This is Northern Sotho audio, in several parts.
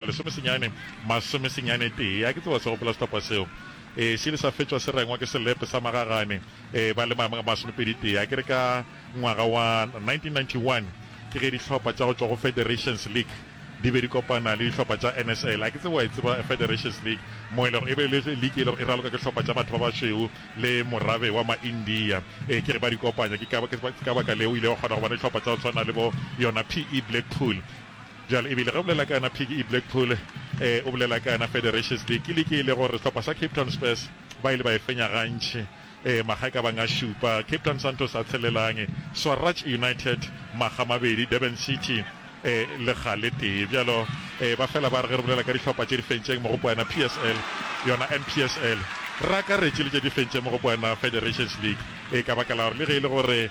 Lesome senyane masome senyane tee. A ke tseba wa se gopola setapa seo? Ee, se ile sa fetšwa se rengwa ke selepe sa magagane ba le ma, masomepedi tee, a ke re ka ngwaga wa 1991, ke ge dihlopha tša go tšwa go Federations League di be di kopana le dihlopha tša NSL. A ke tsebe wa e tseba Federations League, mo e lego e be e le liki e lego e raloka ke hlopha tša batho ba bašweu le morabe wa ma-India. Ee, ke re ba di kopanya. Ke ka, ke ka baka leo o ile wa kgona go bona dihlopha tša go swana le bo yona PE Blackpool. Bjale, ebile ge o bolela ka yona phiki e Blackpool, ee, o bolela ka yona Federations League, ke league e le gore sehlopha sa Cape Town Spurs ba ile ba e fenya gantši, ee, makga e ka bang a šupa, Cape Town Santos a tshelelang, Swaraj United makga a mabedi, Durban City, ee, lekga le tee. Bjalo, ee, ba fela ba re ge re bolela ka dihlopha tše di fentšeng mogopo wa yona PSL, yona NPSL, re akaretše le tše di fentšeng mogopo wa yona Federations League, ee, ka baka la gore le ge e le gore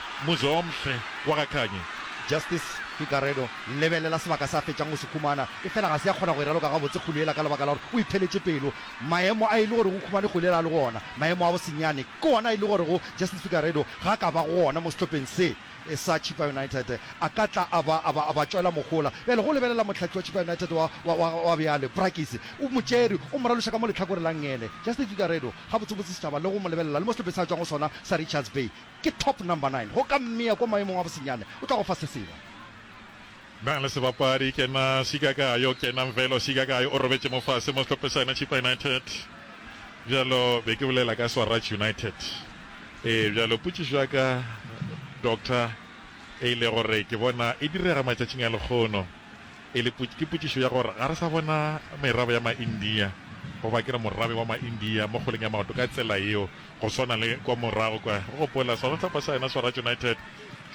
Muzomhle wa ga Khanye. Justice Figueredo, Lebelela sebaka se a fetšang go se humana, efela ga se a kgona go e raloka gabotse kgole yela ka lebaka la gore o itheletše pelo. Maemo a e le gore go humane kgole yela a le go ona, maemo a bosenyane, ke ona a e le gorego Justice Figueredo ga a ka ba gona mo sehlopheng se sa Chippa United, a ka tla a ba, a ba, a ba tšwela mohola. Bjale go lebelela mohlahli wa Chippa United wa, wa, wa, wa bjale, Brakkies, o mo tšere, o mo raloša ka mo lehlakore la ngele. Justice Figueredo, gabotsebotse setšhaba le go mo lebelela le mo sehlopheng se a tšwang go sona sa Richards Bay, Ke top number nine go ka mmea ko maemong a bosenyane o tla go fa se sengwe. Na le sebapadi ke na sika ka yo ke na Mvelo sika ka yo o robetše mo fase mo sehlope sa yena Chippa United bjalo be ke bolela ka Swaraj United ee bjalo potšišo ya ka Doctor e ile gore ke bona e direga matšatšing a lekgono e le ke potšišo ya gore ga re sa bona merabe ya ma India goba ke re morabe wa ma India mo kgoleng ya maoto ka tsela yeo Go swana le kwa morago kwa, o gopola, sona hlopha sa yena sa Raj United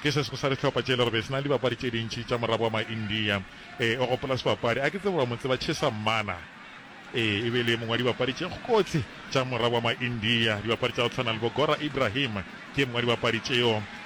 ke se sengwe sa dihlopha tše e lego be se na le dibapadi tše dintši tša moraboa ma India. Ee, o gopola sebapadi, a ke tsebe wa mo tseba, Chesa Mmana. Ee, e be e le ye mongwe wa dibapadi tše kgokotsi tša moraboa ma India. Dibapadi tša go tshwana le bo Gora Ibrahim ke ye mongwe wa dibapadi tšeo.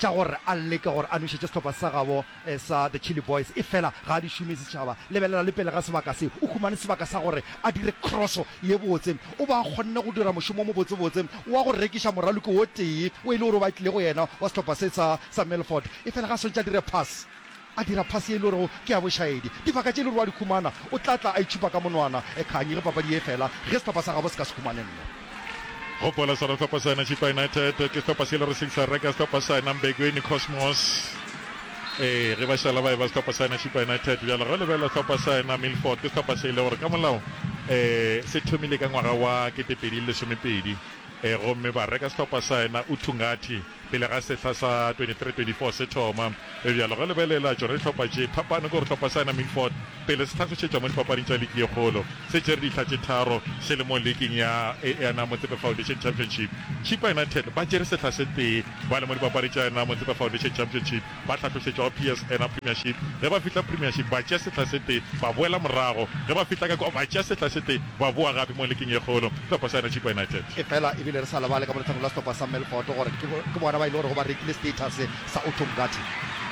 tša gore a leke gore a nwešetše sehlopha sa gabo sa The Chilli Boys, efela ga a di šome. Setšhaba, lebelela le pele ga sebaka se. O humane sebaka sa gore a dire kroso ye botse. O be a kgonne go dira mošomo o mobotsebotse wa go rekiša moraloki o tee o e le gore o batlile go yena wa sehlopha se sa Milford, efela ga a swantše a dire pass. A dira phase ye e lorego ke ya bošaedi. Dibaka tše e lorego a di humana, o tla tla a itšhupa ka monwana. Ekhanyi ge papadi ye e fela, ge sehlopha sa gabo se ka se humane nno. Gopola sona sehlopha sa yena Chippa United ke sehlopha se e lego se sa reka sehlopha sa yena Mbegweni Cosmos. Ee, ge ba šala ba eba sehlopha sa yena Chippa United. Bjale ge o lebelela sehlopha sa yena Milford, ke sehlopha se e le gore ka molao ee se thomile ka ngwaga wa kete pedi le lesomepedi. Ee, gomme ba reka sehlopha sa yena Utungathi. Pele ga sehla sa 23-24 se thoma, re bjalo re lebelela tšona dihlopha tše phapano ke gore hlopha sa Nami Fort pele se hlagišetšwa mo dipapading tša liki ye kgolo se tšere dihla tše tharo se le mo liking ya Eana Motsepe Foundation Championship. Chippa United ba tšere sehla se tee ba le mo dipapadi tša Eana Motsepe Foundation Championship. Ba hlatlošetšwa go PSNA Premiership, ge ba fihla Premiership ba tšea sehla se tee ba boela morago, ge ba fihla ka kwa ba tšea sehla se tee ba boa gape mo liking ye kgolo. Sehlopha sa yona Chippa United. Efela e bile re sa lebale ka mo letlhakoreng la sehlopha sa Melfort gore ke ke bona ba e le gorego ba rekile status sa Otto Ngati.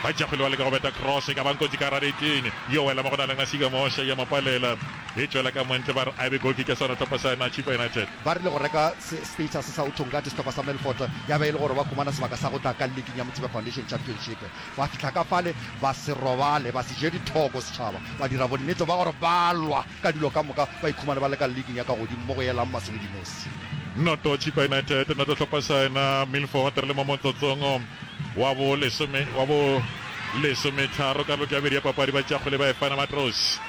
Bajakgwele ba leka go beta cross e ka bang kotsi ka gare neteng, yo wela mo go na le Nasiga Mosha ya mo palela e tšwela ka mo ntle ba re a e be goal kick ya sona sehlopha sa yona Chippa United. Ba rile go reka status sa Uthong ka disehlopha sa Melfort ya be e le gore ba humana sebaka sa go tla ka Liking ya Motsepe Foundation Championship. Ba fihla ka fale, ba se robale, ba se je dithoko setšhaba, ba dira bonnete ba gore ba lwa ka dilo ka moka ba ikhumane ba le ka Liking ya ka godimo mo go yelang Masubidinosi. Noto Chippa United, noto sehlopha sa yena Milfort re le mo motsotsong wa bo lesome wa bo lesometharo karolo ke ya bobedi ya papadi ba tšea kgwele ba e fana Matroos.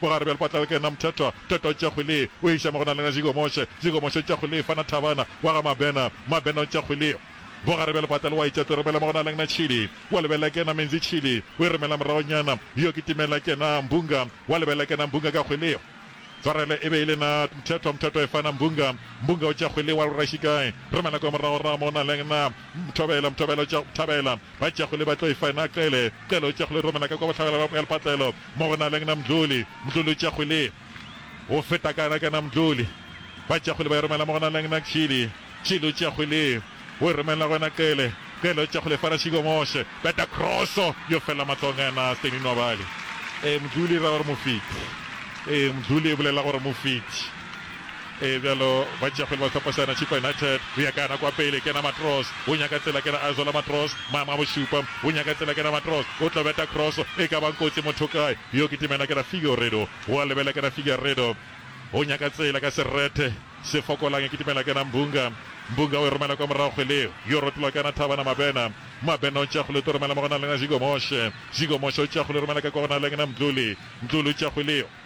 Bogare bja lepatla le kena Mthethwa, Mthethwa o tšwa kgwele o iša mo go na lena Jigomoshe, Jigomoshe o tšwa kgwele fana Thabana wa ga Mabena, Mabena o tšwa kgwele. Bogare bja lepatla le wa itša Toropela mo go na lena Tšhili, wa lebella e kena Menzi Tšhili o e romela moragonyana, yo ke Timela kena Mbunga, wa lebella e kena Mbunga ka kgwele. Tshwarelo e be e le na Mthethwa, Mthethwa e fana Mbunga, Mbunga o tšwa kgwele wa lora Šikae romela kwa moragorago mo go na lena Mthobela, Mthobela o tšwa Thabela. Ba tšago le ba tlo e fa na Cele, Cele o tšago le Romela ka kwa bohlabela bja Moealpatlelo mo go na leng na Mdluli, Mdluli o tšago le go feta ka na ka na Mdluli, ba tšago le ba e romela mo go na leng na Chili, Chili o tšago le go e romela go na Cele, Cele o tšago le fa Rashiko Moshe, beta kroso yo fela matlong a na Stanley Nwabali. Ee, Mdluli e ra gore Mofeti. Ee, Mdluli e bolela gore Mofeti. Ee, bjalo ba tšea pele ba hlopa Saena Chippa United. Go ya ka nako ya pele, kena Matros o nyaka tsela, kena Azola Matros maemo a bošupa o nyaka tsela, kena Matros o tlo beta cross e ka bang kotsi motho kae yo kitimela, kena Figueiredo go a lebela, kena Figueiredo o nyaka tsela ka serethe se fokolang e kitimela, kena Mbunga Mbunga o e romela kwa morago kgweleng yo rotlola, kena Thabana Mabena Mabena o tšea kgwele o tlo romela mo go naleng Zigo Moshe Zigo Moshe o tšea kgwele o romela ka kwa go naleng na Mdluli Mdluli o tšea kgwele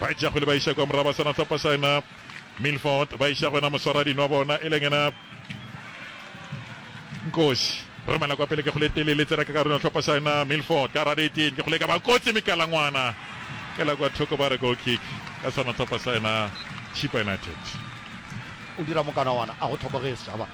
Ba etša kgwele ba iša kwa morago ba swana hlopa sa ena Milford ba iša go ena moswara dino wa bona e leng ena Nkosi romela kwa pele ke kgwele tele le tsena ka karolong hlopa sa ena Milford ka rade eteng ke kgwele ka ba kotsi mekalangwana ke la kwa thoko ba re goal kick ka swana hlopa sa ena Chipa United o dira mokanawana a go thoko ge setšhaba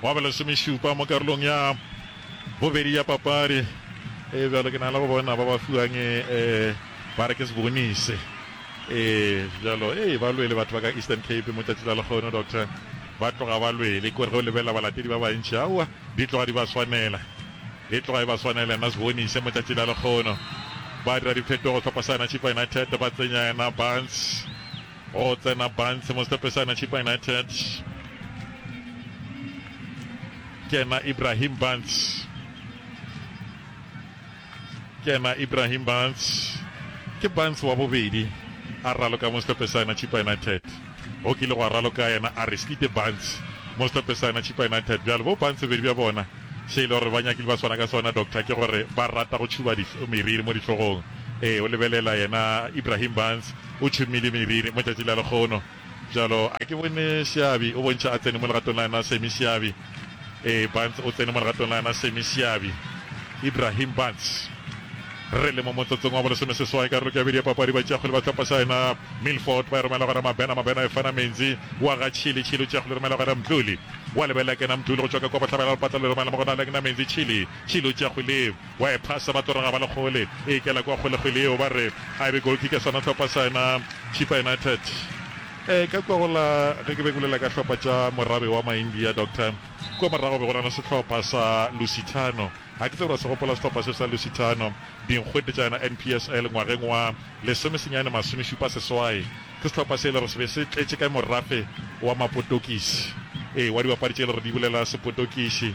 Gwa ba lesomešupa mo karolong ya bobedi ya papadi. Ee, bjalo ke na le go bona ba ba fiwang e ba re ke se bonise. Ee, bjalo ee, ba lwele batho ba ka Eastern Cape mo tšatši la lekgono, doctor. Ba tloga ba lwele, kore ge o lebelela balatedi ba bantši, aowa, di tloga di ba swanela. E tloga e ba swanela yena se bonise mo tšatši la lekgono. Ba dira diphetogo, hlopha sa yena Chippa United ba tsenya yena Barnes. Go tsena Barnes mo setopesana Chippa United. Kena Ibrahim Barnes. Kena Ibrahim Barnes. Ke Barnes wa bobedi a raloka mo setopesana Chippa United. Go kile go raloka yena Aristide Barnes mo setopesana Chippa United. Bjalo bo Barnes bedi bja bona se ile gore ba nyakile ba swana ka sona doctor ke gore ba rata go tšhuba meriri mo ditlogong. Ee o lebelela yena Ibrahim Barnes O tšhomile mebele mo tšatši la lekgono bjalo a ke bone Seabi o bontšha a tsene mo legatong la yena Sammy Seabi Ee Barnes o tsene mo legatong la yena Sammy Seabi Ibrahim Barnes Re le mo motsotsong wa bolesomeseswai karolong ya bobedi ya papadi Batšeakgwele ba sehlopha sa yena Milford ba e romela go yena Mabena Mabena e fana Menzi wa ga Chili Chili o tšea kgwele e romela go yena Mdluli wa lebelela ke yena Mdluli go tšwa ka kwa bohlabela la lepatla le romela mo go Nal'Gna Menzi Chili Chili o tšea kgwele Wa e phasa ba toroga ba le kgole e ikela kwa kgole kgwele yeo ba re a e be goalkick ya sona hlopa sa yona Chippa United. E ka kwa go la ge ke be ke bolela ka hlopa tša morabe wa Maindia Doctor kwa morago be go na le sehlopha sa Lusitano ga ke tsebe ra se gopola sehlopha se sa Lusitano dinkgwete tša yona NPSL ngwageng wa lesome senyane masome šupa seswai ke sehlopha se e le gore se be se tletše ka morafe wa mapotokisi ee wa dibapadi tše e le gore di bolela sepotokiši.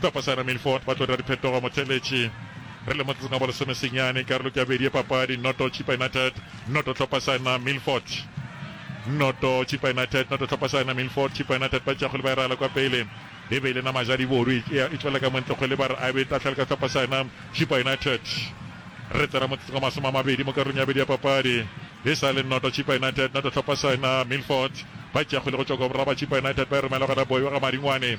Tlhopha Sarah Milford, ba tlo dira diphetogo motheeletši re le motseng wa lesome senyane, karolo ke ya bobedi ya papadi, noto Chippa United, noto Tlhopha Sarah Milford, noto Chippa United, noto Tlhopha Sarah Milford, Chippa United ba tšakgole ba irala kwa pele e be e le nama ja diboru e tšwela ka montle kgwele ba re a be tatlhale ka Tlhopha Sarah Chippa United re tsena motseng wa masome a mabedi mo karolong ya bobedi ya papadi e sa le noto Chippa United, noto Tlhopha Sarah Milford ba tšakgole go tšwa kwa boraba Chippa United ba e romela gona boyo ga Maringwane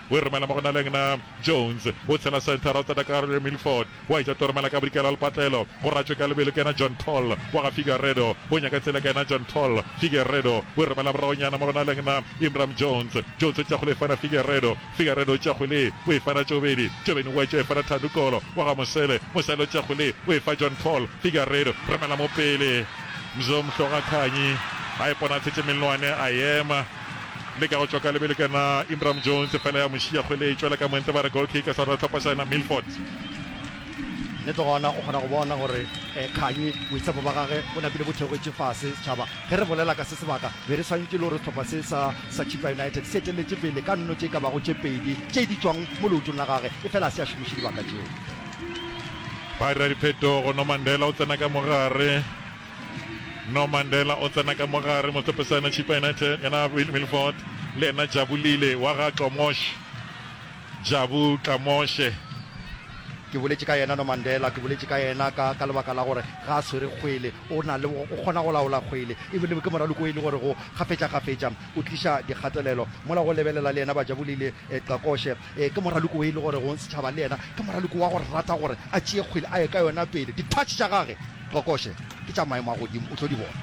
O e romela mo go Nalengna Jones, o tshela Centre Road, Tatakarre, Milford. O a e tša tlo romela ka bodikela le patlelo go Ratšwe ka lebelo, ke yena John Paul wa ga Figueredo. O nyaka tsela, ke yena John Paul Figueredo. O e romela moragonyana mo go Nalengna Imram Jones. Jones o tša kgole e fana Figueredo. Figueredo o tša kgole o e fana Tšobeni. Tšobeni o a e tša e fana Thando Kolo wa ga Mosele. Mosele o tša kgole o e fa John Paul Figueredo. Romela mo pele. Mzo Mhlogakganyi a ipona a thetše mellwane, a ema. Le ka go tšwa ka lebelo ke yona Imram Jones fela ya mo šiya kgwele e tšwela ka moento ba re goal kick sa rona tlhopha sa yena Milford. le tlo gona o kgona go bona gore um kganyi boitshepo ba gage bo napile bo theogetse fase setšhaba ge re bolela ka se sebaka be re swantšwe le gore sehlopha se sa sa chipa united se eteletše pele ka nno tše ka bago tše pedi tše di tšwang mo leotong la gage e fela a se a šomiše dibaka tšeo ba dira diphetogo nomandela o tsena ka mogare No Mandela o tsena ka mo gare, mohlopesana Chippa United, yena Will Milford le yena Jabu Lile wa ga Tlomosh, Jabu Tlamoshe. Ke boletše ka yena No Mandela, ke boletše ka yena ka, ka lebaka la gore ga a swere kgwele, o na le, o kgona go laola kgwele. E bile ke moraloko e le gorego kgafetšakgafetša o tliša dikgatelelo. Mola go lebelela le yena ba Jabu Lile, Qakoshe. Ee, ke moraloko wo e le gore go setšhaba le yena ke moraloko wa go rata gore a tšee kgwele a ye ka yona pele. Dithatšhe tša gage, Kokoše, ke tša maemo a godimo, o tlo di bona.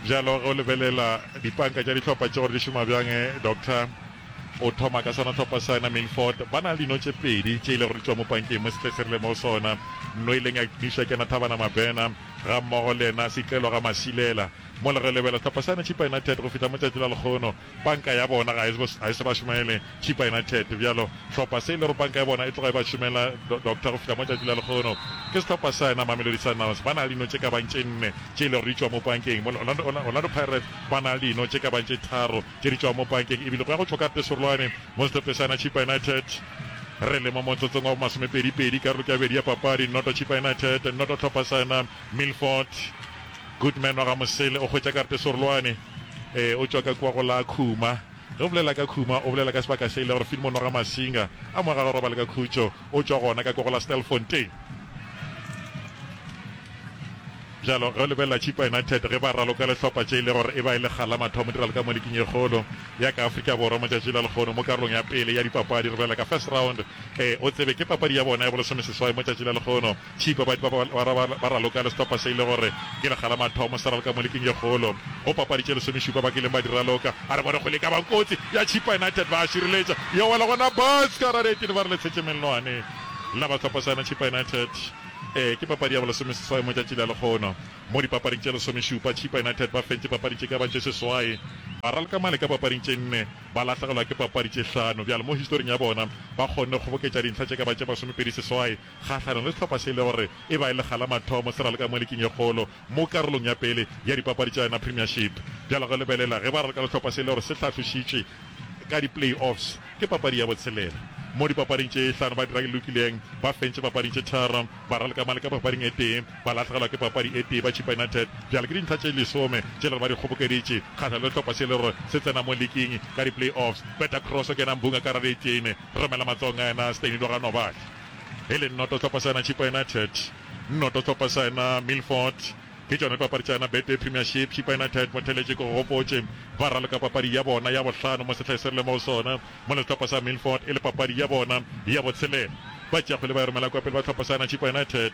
Bjalo ge o lebelela dipanka tša dihlopha tše gore di šoma bjang, Doctor, o thoma ka sona hlopha sena, Milford. Ba na le dino tše pedi tše e lego di tšwa mo pankeng mo sehle se rile mo go sona. No e leng ya Kdisha Kena Thabana Mabena gammogo le yena Setlelwa Gamasilela. Mola re lebela sehlopha sane Chippa United go fihla mo tšatši la lekgono, Panka ya bona ga e se ba šomaele Chippa United, bjalo hlopha se e lego panka ya bona e tloga e ba šomela Doctor go fihla mo tšatši la lehono ke sehlopha sa yona Mamelodi Sundowns. Ba na le dino tše ka bang tše nne tše e lego di tšwa mo pankeng, mo Orlando Pirates ba na le dino tše ka bang tše tharo tše di tšwago mo pankeng, ebile go ya go tšwa ka pesorolwane mo sehlophe sa yona Chippa United. Re le mo motsotsong wa bomasomepedi pedi karolo ke ya bobedi ya papadi, noto Chippa United, noto hlopha sa yona Milford. Goodman wa ga Mosele o hwetša ka pesorolwane. E, o tšwa ka kua go la Khuma. Ge o bolela ka Khuma, o bolela ka sebaka se e le gore Filmon wa ga Masinga a mo aga gorobalo ka khutšo. O tšwa gona ka kua go la Stelfontein. Bjalo, ge o lebelela Chippa United ge ba raloka lehlopha tše e le gore e ba e le kgala mathomo di raloka mo liking ye kgolo ya ka Afrika Borwa matšatši la lekgono mo karolong ya pele ya dipapadi re bolela ka first round. E, o tsebe ke papadi ya bona ya bolesomeseswai mo tšatši la lekgono. Tšhipa ba ba ba ra ba ba raloka le sehlopha se e le gore ke lekga la mathomo se raloka mo liking ye kgolo go papadi tše lesomešupa ba kileng ba di raloka. A re bone kgole e ka ba kotsi ya Tšhipa United ba a šireletša ya wela gona bas ka rara eteni ba re le tshetše mellwane la ba sehlopha sa yona Tšhipa United. Ee ke papadi ya bo lesomeseswai mo tšatši la lekgono mo dipapading tše lesomešupa Tšhipa United ba fentše papadi tše ka ba tše seswai, ba raloka male ka papading tše nne ba lahlegelwa ke papadi tše hlano bjale mo historing ya bona ba kgonne kgoboketša dintlha tše ka ba tše masomepedi seswai. kgahlanong le sehlopha se e le gore e ba e le ga la mathomo se raloka mo liking e kgolo mo karolong ya pele ya dipapadi tša yona Premiership. Bjalo ka lebelela ge ba raloka le sehlopha se e le gore se hlahlošitšwe ka di-play-offs ke papadi ya botshelela mo dipapading tše hlano ba dira e lokileng, ba fentše papading tše tharo, ba raloka male ka papading e tee, ba lahlegelwa ke papadi e tee ba Chippa United. Bjale ke dintlha tše lesome tše e le gore ba di kgobokeditše kgahlanong le sehlopha se e le gore se tsena mo liking ka di-play-offs. Beta cross o kena mbung a ka radietšeine, romela matsogong a yena Steny Loganobali. e le nnoto tlhopha sa yona Chippa United, nnoto tlhopha sa yona Milford. Ke tšona dipapadi tša yona Betway Premiership. Chippa United Motheletši ke go gopotše ba raloka papadi ya bona ya bohlano mo sehleng se re leng mo go sona, mola sehlopha sa Milford e le papadi ya bona ya botshelela. Ba tšeakgwele ba e romela kwa pele ba tlhopha sa yona Chippa United.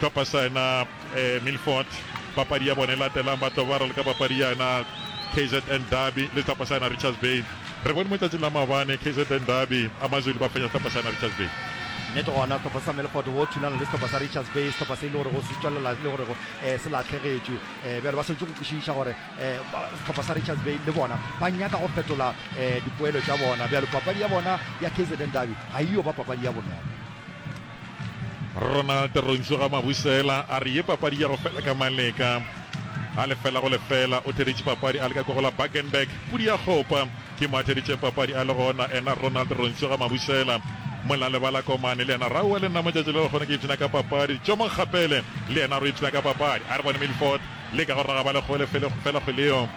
Hlopha sa yona Milford papadi ya bona e latelang ba tlo ba raloka papadi ya yona KZN Derby le hlopha sa yona Richards Bay. Re bone mo tšatšing la maobane KZN Derby a Mazulu ba fenya hlopha sa yona Richards Bay. Nnete gona hlopha sa Milford wo thulana le hlopha sa Richards Bay hlopha se e le gore go se tšwelela le gore se lahlegetšwe bjale ba swanetše go kwešiša gore hlopha sa Richards Bay le bona ba nyaka go fetola dipoelo tša bona bjale papadi ya bona ya KZN Derby ga e yo ba papadi ya bonolo. Ronald Rontšu ga Mabusela a re ye papadi ya go fela ka maleka a lefela go lefela o theeditše papadi a leka ko go la Bakenberg pudi ya kgopa ke mo a theeditšeng papadi a le gona ena Ronald Rontšu ga Mabusela Molale ba la komane le yena Raua le nna motšatši le gona ke ipshina ka papadi Tšomo Kgapele le yena re ipshina ka papadi a re bone Milford le ka go raga ba le gole fela kgweleo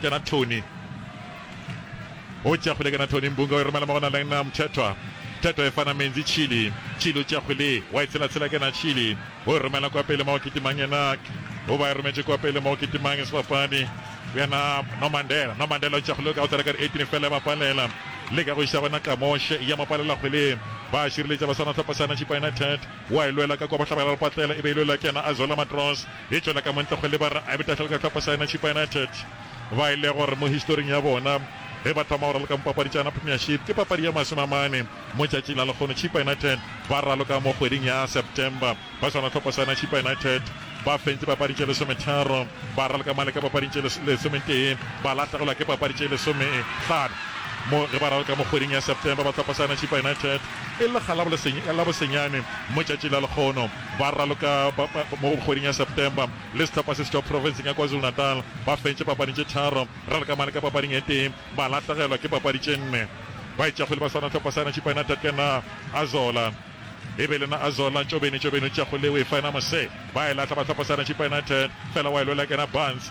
Ke na Tony. O tšea kgwele ke na Tony Mbunga o e romela mo go na leng na Mthethwa. Mthethwa e fana Menzi Chili. Chili o tšea kgwele wa e tshelatshela ke na Chili. O e romela kwa pele mo go Kitimang yena o ba e rometše kwa pele mo go Kitimang sebapadi yena Nomandela. Nomandela o tšea kgwele ka go tsela ka re 18 fela ba palela le ka go iša gona Kamoshe ya mo palela kgwele ba šireletša ba swana tlhopha sana Chippa United wa e lwela ka kwa bohlabela le patlela e be e lwela ke yena Azola Matros. e tšwela ka montle go leba re abetafela ka tlhopho sa yona Chippa United ba e le gore mo historing ya bona ge ba thoma go raloka mo papadi tša yona Premiership ke papadi ya masome a mane mo tšatši la lekgono Chippa United ba raloka mo kgweding ya September ba swana tlhopho sa yona Chippa United ba fentse papading tše lesometharo ba raloka male ka papading tše lesometee ba lahlegelwa ke papadi tše lesomehlano mo ge ba raloka mo kgweding ya September ba tlhopho sa yona Chippa United e le ga la bosenyane mo tšatši la lekgono ba raloka mo kgweding ya September le sehlopha se setšwa profenseng ya KwaZulu-Natal. Ba fentše papadi tše tharo, Ralkamane ka papading e tee, ba lahlegelwa ke papadi tše nne. Baetšakgwele ba swana sehlopha sena Chippa United ke na Azola e be le na Azola Ntšobeni. Ntšobeni o tšea kgwele o e fa ena Mosee, ba e lahla ba sehlopha sena Chippa United fela wa e lwela ke na Barnes.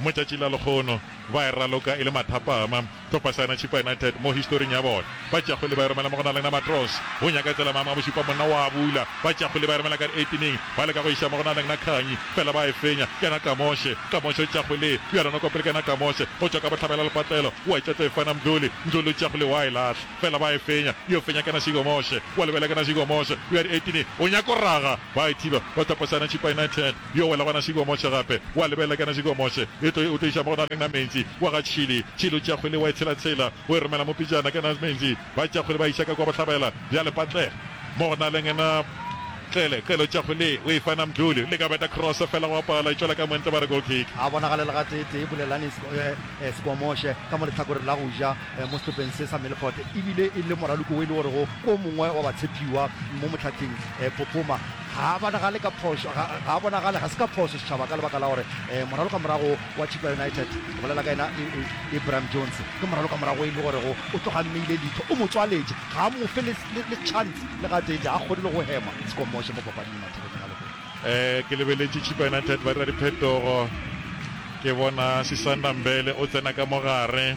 Mo tšatšing la lekgono ba e raloka e le mathapama hlopha sa yona Chippa United mo historing ya bona. Ba tšea kgwele ba e romela mo go na le Namatros. O nyaka tsela Mama Bošupa monna o a bula. Ba tšea kgwele ba e romela ka diatineng. Ba leka go e ša mo go na le Nakhanyi fela ba e fenya. Ke yena Kamoshe. Kamoshe o tšea kgwele bjalo noko pele ke yena Kamoshe go tšwa ka bohlabela lepatlelo. O a e tšwetla e fana Mdluli. Mdluli o tšea kgwele o a e lahla fela ba e fenya. Yo fenya ke yena Sigomoshe. O a lebelela ke yena Sigomoshe. O ya diatineng o nyaka go raga ba e thiba ba hlopha sa yona Chippa United. Yo wela gona šidi wa motšhe gape, wa lebelela kana šidi wa motšhe e tlo e, o tlo iša mo go na leng na mentsi wa ga tšhili. Tšhili o tšea kgwele wa e tshela-tshela, o e romela mo pejana kana mentsi ba tšea kgwele ba iša ka kwa bohlabela bja lepatle mo go na leng na Qele. Qele o tšea kgwele o e fa na Mdluli, o leka go beta cross fela go a pala, e tšwela ka mo ntle ba re goal kick. A bonagale le gatee-tee Bulelani Sikwamoshe ka mo lehlakoreng la go ja mo sehlopeng se sa Milford, e bile e le moraloko wo e le gorego o mongwe wa batshepiwa mo mohlatheng Phophoma. Ga a bonagale ka phošo, ga, ga a bonagale, ga se ka phošo setšhaba ka lebaka la gore eh, moralokamorago wa Chippa United, ke bolela ka yena I, I, Ibrahim Jones, ke moralokamorago e le gorego o tloga mmeile leitho, o mo tswaletše, ga a mo fe le, le, le chance le gatee, ga a kgone le go hema, se komoše mo papading mathekeng a lehono. Eh, ke lebeletše Chippa United ba dira diphetogo, ke bona Sisanda Mbele o tsena ka mo gare.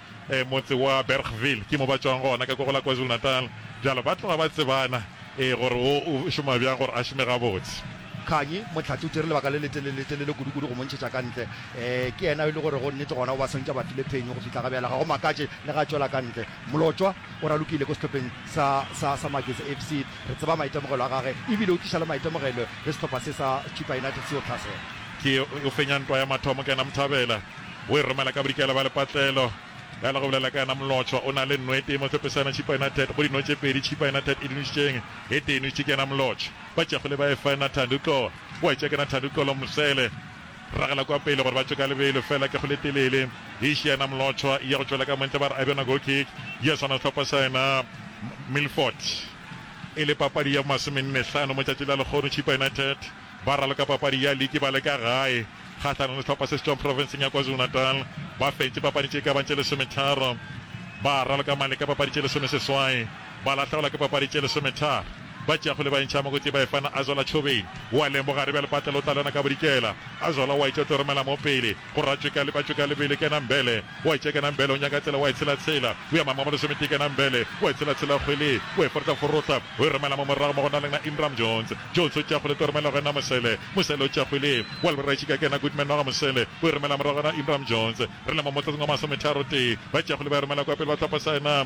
Motse wa Bergville ke mo ba tšwago gona ka ko go la KwaZulu-Natal, bjalo ba tloga ba tsebana ee gore wo o šoma bjang gore a šome gabotse. Kganyi, Motlhatse o tšere lebaka le letelele-telele kudu-kudu go mo ntšhetša ka ntle. Ee, ke yena yo e le gore go nnete gona o ba swantša ba tlile phenyo go fihla ga bjale. Ga go makatše le ge a tšwela ka ntle. Molotšwa o ralokile ko sehlopheng sa, sa, sa Magezi FC. Re tseba maitemogelo a gage e bile o tliša le maitemogelo le sehlopha se sa Chippa United se yo tlhasela. Ke yo o fenya ntwa ya mathomo ka yena Mthabela. O e romela ka bodikela bja lepatlelo. Bjale go bolela ka yena Molotšwa. O na le nno e tee mo Tshepesane Tšhipa yona Ted. Go dinno tše pedi Tšhipa yona Ted e di nwešitšeng? E tee e nwešitše ke yena Molotšwa. Ba tšegole ba e fa yena Thandi. O tlo wa e tšea ke yena Thandi. O tlo lo mo sele ragela kwa pele gore ba tšwe ka lebelo. Fela kegolo e telele e išia yena Molotšwa e ya go tšwela ka montle. Ba re a bjona goal kick ya swana sehlopha sa yena Milford. E le papadi ya masomenne hlano mo tšatši la lekgono Tšhipa yona Ted. Ba raloka papadi ya liki ba le ka gae kgahlanong le sehlopha se se tšwago profenseng ya KwaZulu-Natal. Ba fentše papadi tše e ka bago tše lesometharo. Ba raloka mane ka papadi tše lesomeseswai, ba lahlegelwa ke papadi tše lesometharo. Ba tšeakgole ba entšha mo kotsing ba e fana Azola Tšhobeni. O a lemoga re bjale Patlelo o tla lwana ka bodikela. Azola o a itša o tlo romela mo pele. Go ra Tšeka Lepa Tšeka Lebele Kena Mbele O a itšekena Mbele O nyaka tsela O a e tshela tshela O ya Mangwaba Lesometee Kena Mbele O a e tshela tshela Kgwele O a e forotla forotla O e romela mo morago mo go na le na Imram Jones Jones o tšea Kgwele tlo romela go ena Mosele Mosele o tšea Kgwele O a lebora e tšika Kena Goodman wa ga Mosele O e romela morago go ena Imram Jones Re le mo motlotsong wa masometharo tee Ba tšea Kgwele ba e romela kwa pele ba tlhopha sa ena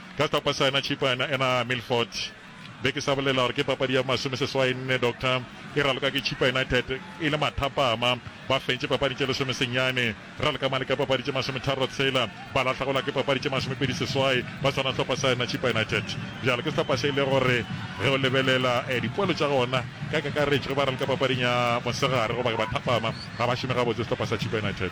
Ka hlopha sa yena Chipo yena ena Milford. Be ke sa bolela gore ke papadi ya masome seswai nne Doctor e raloka ke Chippa United e le mathapama ba fentše papading tše lesome senyane ra leka male ka papadi tše masome tharo tshela ba lahla go la ke papadi tše masome pedi seswai ba swana hlopha sa yena Chippa United bjalo ke hlopha se ile gore ge o lebelela eh, dipoelo tša gona ka kakaretšo ge ba raloka papading ya mosegare goba ke ba thapama ga ba šome gabotse hlopha sa Chippa United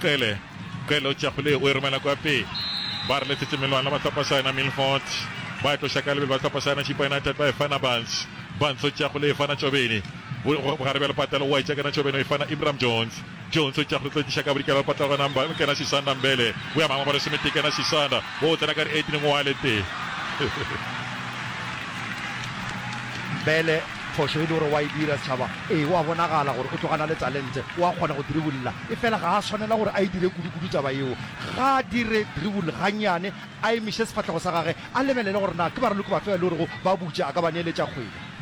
Qele, Qele o tšea kgole ye o e romela kwa pe. Ba re letšetše melwana ba hlopha sa yena Milford. Ba e tloša ka lebelo ba hlopha sa yena Chippa United ba e fana Barnes. Barnes o tšea kgole e fana Tšobeni. Bo, go, gare bjalo Patelo o a e tšea kena Tšobeni o e fana Ibram Jones. Jones o tšea kgole tlo e tliša ka bodikela ba Patelo gona mba, kena Sisanda Mbele. O ya mangwe ba re Semete kena Sisanda. O tsena ka re Edwin Ngwale te. Mbele Phošo e le gore o a e dira, setšhaba, ee, o a bonagala gore o tloga a na le talente, o a kgona go dribulla. Efela ga a swanela gore a e dire kudukudu taba yeo. Ga a dire dribul gannyane, a emiše sefahlego sa gage, a lebelele gore na ke baraloki bafe ba e le gorego ba butša, a ka ba neeletša kgwele.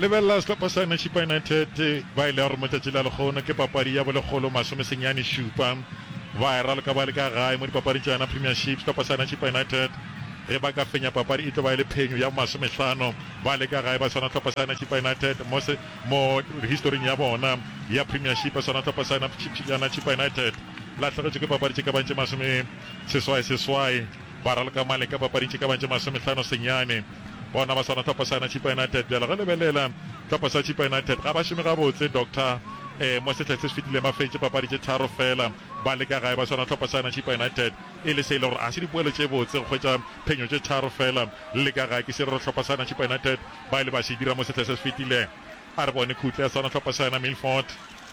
Lebelela sehlopha sa Nashipa United, ba e le ya gore mo tšatši la lekgono ke papadi ya bolekgolo masome senyane šupa. Ba e raloka ba le ka gae mo dipapading tša yona Premiership. Sehlopha sa Nashipa United ge ba ka fenya papadi e tlo ba e le phenyo ya bo masome hlano. Ba le ka gae ba swana hlopha sa Nachipa United mo se mo historing ya bona ya Premiership swana hlopha sa ya Nachipa United lahlegetšwe ke papadi tše ka bago tše masome seswai seswai ba raloka male ka papading tše ka bago tše masome hlano senyane bona ba swana hlopha sa Nachipa United bjale ge lebelela hlopha sa Chipa United ga ba šome gabotse Doctor eh mo sehla se se fetileng ba fetše papadi tše tharo fela ba le ka gae ba swana hlopha sa Nachipa United e le se e le gore a se dipoelo tše botse go hwetša Phenyo tše tharo feela le ka ga ke se re re hlopha sa Nachipa United ba ile ba se dira mo sehla se se fetilego. A re bone khutle ya sona hlopha sa yona Milford.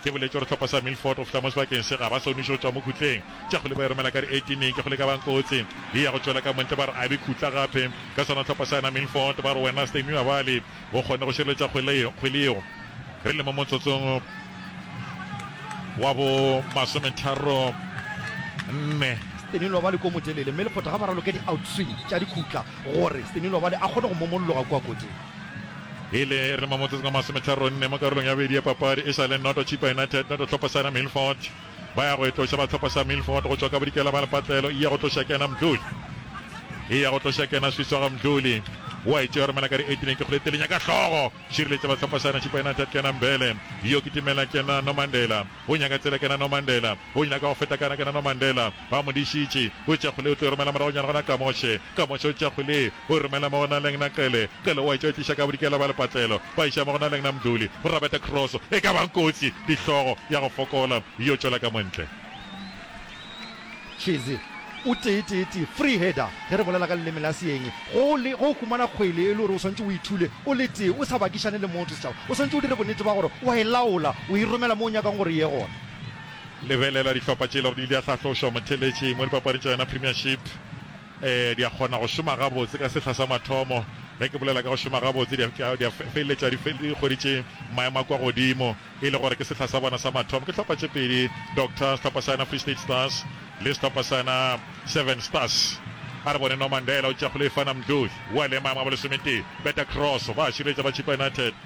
Ke boletše gore hlopha sa Milford go fihla mo sebakeng se ga ba soniše go tšwa mo khutleng. Tša kgole ba e romela ka re etineng ke kgole e ka bang kotsi ye ya go tšwela ka montle ba re abe khutla gape ka sona hlopha sa yona Milford ba re wena Stay Nuabali o kgonne go šireletša kgwele yeo re le mo motsotsong wa bo masometharo nne. Stanilwa ba le ko motelele mme lephoto ga ba raloke di-outswing tša dikhutla gore Stanilwa ba le a kgone go momolloga kua koting. E le re mo motsotsong wa masometharo nne mo karolong ya bobedi ya papadi e sa le noto Chippa United noto tlhopho Sarah Milford. Ba ya go etloša ba tlhopha sa Milford go tšwa ka bodikela ba lepatlelo. Eya go tloša kena Mdluli. Eya go tloša kena Swiswaga Mdluli. O a e tšea romela ka di eighteen ke kgole telenya ka hlogo. Šireletša ba tlhopha sa Nachipa United kena Mbele. Yo kitimela kena Nomandela. O nyaka tsela kena Nomandela. O nyaka go feta kana kena Nomandela. Ba mo dišitše, O tša kgole o tlo romela moragonyana gona ka Moshe, ka Moshe o tša kgole o romela mo go na lengna Qele, Qele o a etša o tliša ka bodikela ba lepatlelo, ba iša mo go na lengna Mduli, go rabeta Kroso, e ka bang kotsi, dihlogo, ya go fokola, yo tšwela ka montle. Cheze, O tee tee tee, free header, ge re bolela ka leleme la Seeng, go le, ge o humana kgwele e le gore o swanetše o e thule o le tee, o sa bakišane le motho, setšhaba, o swanetše o dire bonnete ba gore o a e laola, o e romela mo o nyakang gore e ye gona. Lebelela dihlopha tše e lego di ile di a hlahlošwa motheeletšeng mo dipapading tša yona Premiership. Ee, di a kgona go šoma gabotse ka sehla sa mathomo. Ge ke bolela ka go šoma gabotse, di a, di a feleletša di, fe, di hweditše maemo a kwa godimo, e le gore ke sehla sa bona sa mathomo. Ke hlopha tše pedi, Doctor, sehlopha sa yona Free State Stars, le sehlopha sa yona Seven Stars. A re bone Norman Dela o tšea kgole e fana Mdloe, Wale maemo a bolesometee, beta cross, ba a šireletša ba Chippa United.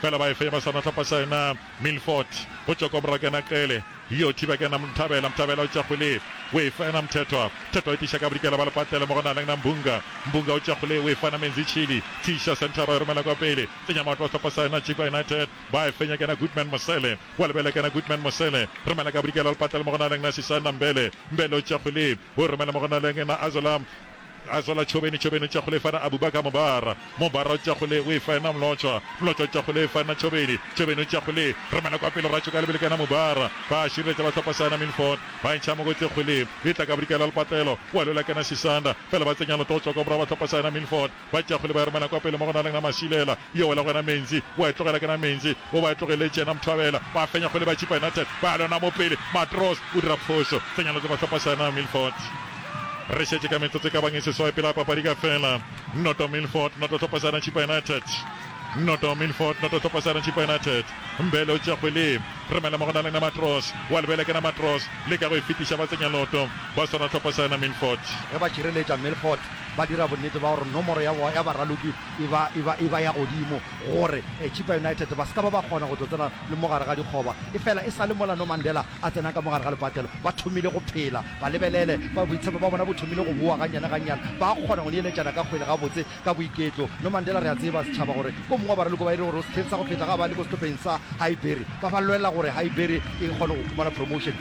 Fela ba efe ba sa natlapa sa yena Milfort go tšwa kwa morago yena Qele yo thiba ke yena Mthabela, Mthabela o tšwa kgole o efa yena Mthethwa, Mthethwa o tiša ka bodikela ba lepatlele mo go na leng na Mbunga, Mbunga o tšwa kgole o efa yena Menzi Chili, Tshisha Centre ba e romela kwa pele tsenya maoto a sehlopha sa yena Chippa United ba e fenya ke yena Goodman Mosele wa lebele ke yena Goodman Mosele romela ka bodikela ba lepatlele mo go na leng na Sisanda Mbele, Mbele o tšwa kgole o e romela mo go na leng na Azola, A tswala tšhobeni, tšhobeni o tšwa kgole e fana Abubaka mobara, mobara o tšwa kgole o e fa ena Mlotshwa, Mlotshwa o tšwa kgole e fa ena tšhobeni, tšhobeni o tšwa kgole re mela kwa pele ra tšhoka lebele ka ena mobara, ba šireletša ba hlopha sa ena Milford, ba ntšha mokotle kgole e tla ka bodikela lepatlelo wa lwela ka ena Sisanda, fela ba tsenya loto go tšwa kwa morago ba hlopha sa ena Milford. Ba tšago le ba erumana kwa pele mo go na leng na Masilela. Yo wela go yena Menzi. Wa e tlogela ke na Menzi. O ba e tlogeletše yena Mthwabela. Ba fenya go le ba tšipa United. Ba lona mo pele. Matros o dira phošo. Tsenyana tse ba hlopa sa yena Milford. Re šetše ka metsotso e ka bang e seswai pele ga papadi ka fela. Noto Milford noto hlopa sa yena Tšhipa United. Noto Milford noto hlopa sa yena Tšhipa United. Mbele o tšago le remela mo go na leng na Matros. Wa lebela ke na Matros. Leka go e fetiša ba tsenya loto. Ba swara hlopa sa yena Milford. Ge ba tšireletša Milford. ba dira bonnete ba gore nomoro ya boa ya baraloki e ba, e ba, e ba ya godimo gore Chippa United ba se ka ba ba kgona go tlo tsena le mo gare ga dikgoba. Efela e sa le mola Nomandela a tsenang ka mo gare ga lepatelo, ba thomile go phela. Ba lebelele, ba, boitshepo bja bona bo thomile go boa gannyane-gannyane. Ba kgona go neeletšana ka kgwele gabotse, ka boiketlo. Nomandela, re a tseba, setšhaba, gore ke o mongwe wa baraloki ba e le gore o sehleng sa go feta ga ba le ko sehlopheng sa Highbury. Ba ba lwelela gore Highbury e kgone go khumana promotion.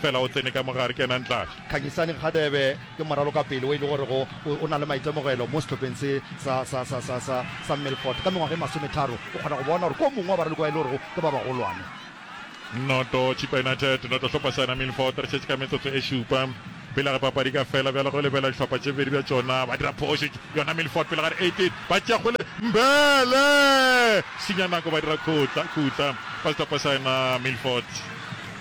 Fela o tsene ka mo gare, kenang tlase. Khanyisani Radebe ke moralokapele o e le gorego o na le maitemogelo mo sehlopheng se sa, sa, sa, sa, sa, sa Milford. Ka mengwaga e masometharo, o kgona go bona gore ke o mongwe wa baralokwa ba e le gorego ke ba bagolwane. Noto, Chippa United, noto, Sehlopha sena Milford. Re šetše ka metsotso e šupa pele ga papadi ka fela, bjale go lebela dihlopha tše bedi bja tšona. Ba dira phošo yona Milford pele ga re 18 ba tšea kgole. Mbele! Senya nako, ba dira khutla, khutla, ba sehlopha sena Milford.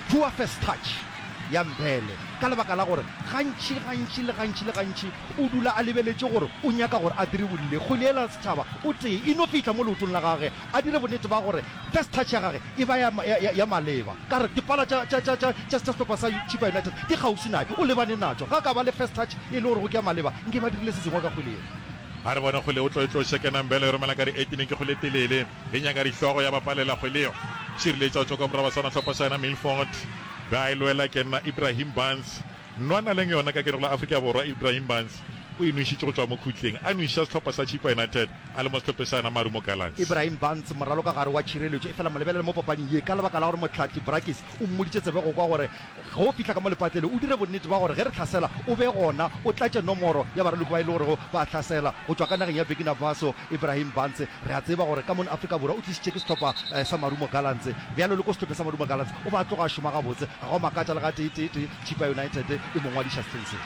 Poor first touch ya Mbhele ka lebaka la gore gantši gantši le gantši le gantši o dula a lebeletše gore o nyaka gore a diribolle kgwele yela ya setšhaba o tee e no fihla mo leotong la gage a dire bonnete ba gore first touch ya gage e ba ya maleba. Ka re dipala tša tša tša tša tša sehlopha sa Chippa United di kgaufsi naye o lebane natšo ga ka ba le first touch e le gore go ke ya maleba nke ba dirile se sengwe ka kgwele yela. A re bona kgwele o tlo e tlo shekena Mbhele e romela ka di eighteen ke kgwele e telele. Re nyaka dihlogo ya bapalelagwe leo šireletšo tšo ka moraba sona hlopha sa yena Milford ba e lwela ke nna Ibrahim Barnes nwa na leng yona ka ke re go la Afrika Borwa Ibrahim Barnes o e nwešitše go tšwa mo khutleng a nwešiša sehlopha sa Chippa United a le mo sehlophe sa yena Marumo Gallants. Ibrahim Barnes moralokagare wa tšhireletšo efela mo lebelele mo papading ye ka lebaka la gore mohlahli Brakes o mmoditše tsebe go kwa gore Ge o fihla ka mo lepatlelo, o dire bonnete bja gore ge re hlasela o be gona, o tlatše nomoro ya baraloko ba e le gorego ba a hlasela go tšwa ka nageng ya Burkina Faso, Ibrahim Bantse. Re a tseba gore ka mono Afrika Borwa o tlišitše ke sehlopha sa Marumo Gallants. Bjalo le ko sehlopheng sa Marumo Gallants o be a tloga a šoma gabotse, ga go a makatša le gateeteetee Chippa United e mo ngwadiša sehleng se.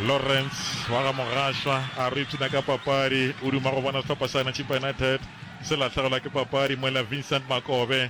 Lawrence wa ga Mogašwa a re o ipshina ka papadi, o duma go bona sehlopha sa yena Chippa United se lahlegelwa ke papadi mola Vincent Makobe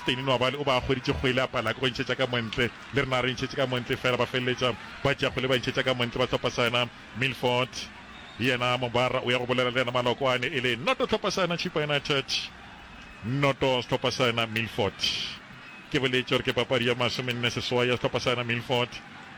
Steyn Nwabali o ba hweditše kgwele a pala ka go ntšhetša ka montle, le rena re ntšhetše ka montle fela ba feleletša ba tšea kgwele ba ntšhetša ka montle ba hlopha sa yona Milford. Yena Mobara o ya go bolela le yena Malokwane e le noto hlopha sa yona Chippa United noto sehlopha sa yona Milford. Ke boletše gore ke papadi ya masomenne seswai ya sehlopha sa yona Milford,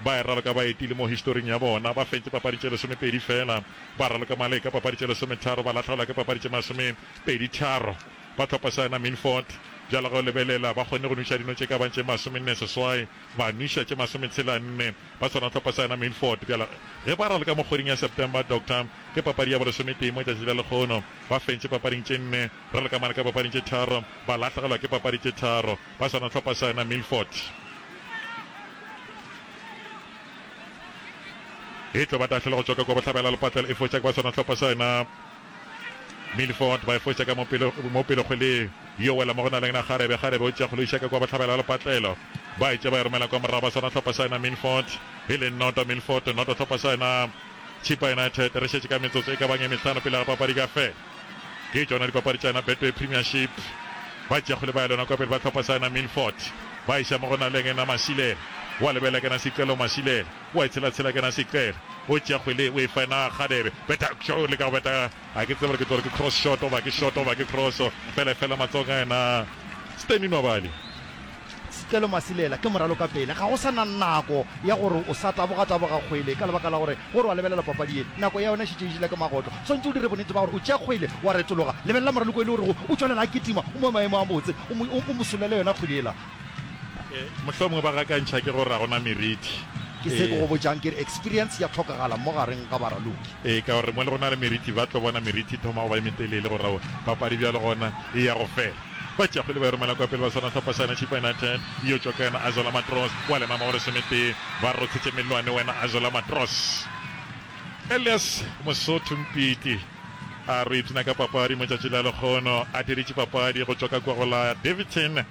ba e raloka baeti le mo historing ya bona ba fentše papadi tše lesomepedi fela, ba raloka male ka papadi tše lesometharo ba lahlaola ka papadi tše masomepedi tharo. ba tlhopa sa yona Minfort. Bjalo ge o lebelela, ba kgonne go nwiša dino tše ka bang tše masomenne seswai, ba nwiša tše masometshela-nne. Ba swana tlhopa sa yona Minfort. Bjalo ge ba raloka mo kgweding ya September, Doctor, ke papadi ya bolesometee mo tšatši la lekgono. Ba fentše papading tše nne, raloka mane ka papading tše tharo, ba lahlegelwa ke papadi tše tharo. Ba swana tlhopa sa yona Minfort. E tlo ba tahlele go tšwa ka kwa bohlabela-lepatlela e fo tšak ba swana tlhopa sa yona Milford ba e foša ka mo pelokgweleng yo wela mo go na leng na kgarebe. Kgarebe o tšea kgolo iša ka kwa bohlabela ya lepatlelo. Ba e tšea ba e romela kwa morago ba swara hlopha sa yena Milford e leng noto Milford noto hlopha sa yena Chippa United re šetše ka metsotso e ka bang e mehlano pele ga papadi ka fela. Ke tšona dipapadi tša yena Betway Premiership. Ba tšea kgole ba ya lona kwa pele ba hlopha sa yena Milford ba iša mo go na leng na Masilela wa lebelela ke na Sicelo Masilela. o a e tshela tshela kana se qele o tšea kgwele o e fa ena Kgadebe beta tšo o leka go beta a ke tsebe gore ke tlo re ke cross shot oba ke shot oba ke cross fele fela matsong a ena Stanley Nwabali. Setlelo Masilela ke moralo ka pele ga go sa na nako ya gore o sa taboga taboga kgwele ka lebaka la gore gore wa lebelela papadi ye nako ya yona e šetše e jele ka magoto swantše o dire bonnete ba gore o tšea kgwele wa retologa lebelela moraloka e le gore o tšwelela a kitima o mo maemo a botse o mo solele yona kgwele yela Mohlomongwe ba gakantšha ke gore ga gona meriti. Ke se ke go botšang ke re eksperience ya tlhokagala mo gareng ga baraloki. Ee, ka gore mo le go na le meriti ba tlo bona meriti e thoma go ba e metelele go ra papadi bjalo gona e ya go fela. Batšeakgwele ba e romela kwa pele ba swana Hlopha sa yona Chippa United e yo tšwa ka yona Azola Matros wa lema magoro semetee ba rothetše mellwane wena Azola Matros. Elias Mosotho Mpiti a re o ipshina ka papadi mo tšatši la lekgono a diritše papadi go tšwa ka kwa go la Daveyton.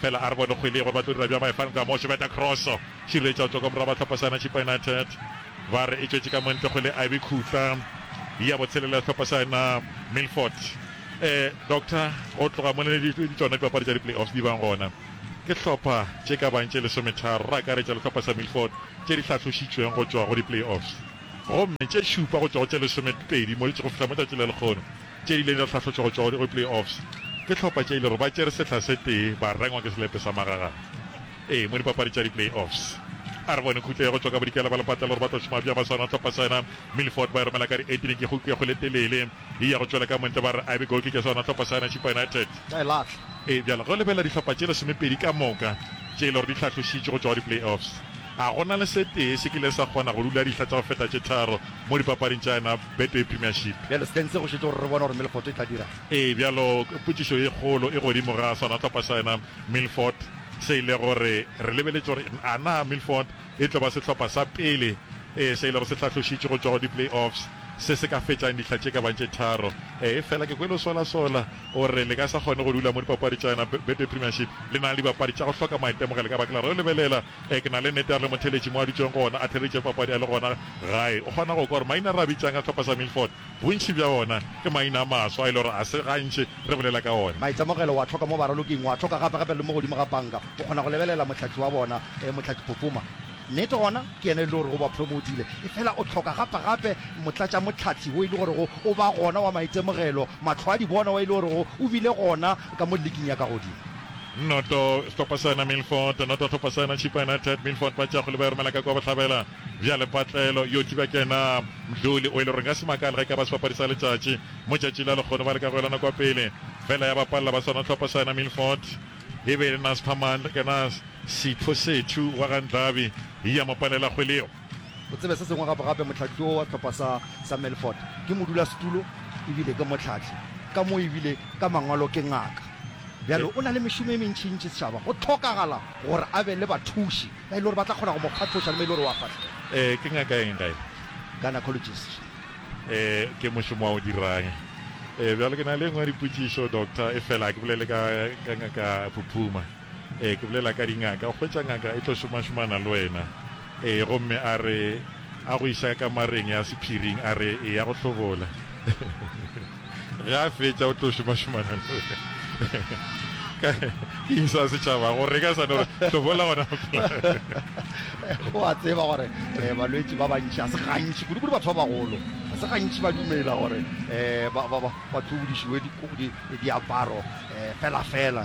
Fela a re bone kgwele ye gore ba tlo dira bjang ba e fanka mo. Tšobeta kroso, šireletša go tšwa ka morago ba Tlhopasana Chippa United ba re e tšwetše ka montle kgwele a e be khutla ya botshelela ya Tlhopasana Milford. Eh Doctor go tloga mo ne di tšona dipapadi tša di-playoffs di bang gona ke hlopha tše ka bang tše lesometharo ra akaretša le Tlhopasa Milford tše di hlahlošitšweng go tšwa go di-playoffs gomme tše šupa go tšwa go tše lesomepedi mo di tšego fihla mo tšatši la lekgono tše ileng tša hlahlo tšogo-tšogo di go play-offs ke hlopha tše e lego ba tšere sehla se tee ba rengwa ke selepe sa magagana ee mo dipapadi tša di-play-offs. A re bone khutlo ya go tšwa ka bodikela ba lepatlela gore ba tlo šoma bjang ba swana hlopha sena Milford ba e romela ka di-18 ke khuku ya go le telele e ya go tšwela ka montle ba re a be goal kick ya swana hlopha sena Chippa United ba e lahla. Ee bjale go lebelela dihlopha tše lesomepedi ka moka tše e lego di hlahlošitšwe go tšwa go di-play-offs a go na le se tee se kile sa kgona go dula dihla tša go feta tše tharo mo dipapading tša yena Betway Premiership. Bjalo Spence go šetše gore re bone gore Milford e tla dira'ng. Ee, bjalo potšišo ye kgolo e godimo ga sona sehlopha sa yena Milford se ile gore re lebeletše gore a na Milford e tlo ba sehlopha sa pele se ilego se hlahlošitšwe go tšwa go di-play-offs se se ka fetšang dihla tše ka bang tše tharo. Efela ke kwele o solasola o re le ka sa kgone go dula mo dipapadi tša yona Betway Premiership le na le dibapadi tša go hloka maitemogelo ka baka la gore o lebelela Ee, ke na le nnete, a re le motheeletši mo a dutšego gona a theeleditše papadi a le gona gae. O kgona go kwa gore maina a re a bitšang a sehlopha sa Milford, bontši bja ona ke maina a maswa a e le gore ga se gantši re bolela ka ona. Maitemogelo o a hloka mo baraloking, o a hloka gape-gape le mo godimo ga panka. O kgona go lebelela mohlatši wa bona, ee, mohlatši Pofoma. Nnete gona ke yena e le gorego o ba promotile. Efela o hloka gape-gape motlatšamohlahli wo e le gorego o ba gona wa maitemogelo, mahlo a dibona wa e le gorego o bile gona ka mo liking ya ka godimo. Noto sehlopha sena Milford, noto sehlopha sena Chippa United, Milford ba tšea kgole ba e romela ka kwa bohlabela, bjale patlelo yo tšuba ke na Mdluli o e le gore nka se makale ge e ka ba sebapadi sa letšatši mo tšatši la lekgono ba leka go elana kwa pele fela ya ba palela ba sona sehlopha sena Milford. E be e le Nasphamandla ke na Sipho Sethu wa ga Ndlabi ya mo palela kgwele yeo. O tsebe se sengwe gape, gape mohlahli wo wa sehlopha sa, sa Melfort ke modulasetulo e bile ke mohlahli, ka mo e bile ka mangwalo ke ngaka. Bjale o na le mešomo e mentšintši setšhaba. Go hlokagala gore a be le bathuši ba e le gore ba tla kgona go mo kgathoša le mo e le gore o a fahlega. Ee, ke ngaka ya eng ga e? Gynecologist. Ee, ke mošomo wa go dira'ng? Ee, bjale ke na le e nngwe ya dipotšišo, Doctor, efela ga ke bolele ka, ka ngaka Phuphuma. Ee, ke bolela ka dingaka. O hwetša ngaka e tlo šomašomana le wena. Ee, gomme a re, A go iša kamareng ya sephiring, a re, Eya go hlobola. Ge a fetša, o tlo šomašomana le wena. Ka, ke eng sa setšhaba? Go reka sa no re, Hlobola gona go fela. O a tseba gore eh, balwetši ba bantši, ga se gantši, kudu-kudu batho ba bagolo, ga se gantši ba dumela gore eh, ba, ba, ba, ba tlobodišiwe di, di, diaparo eh, fela-fela.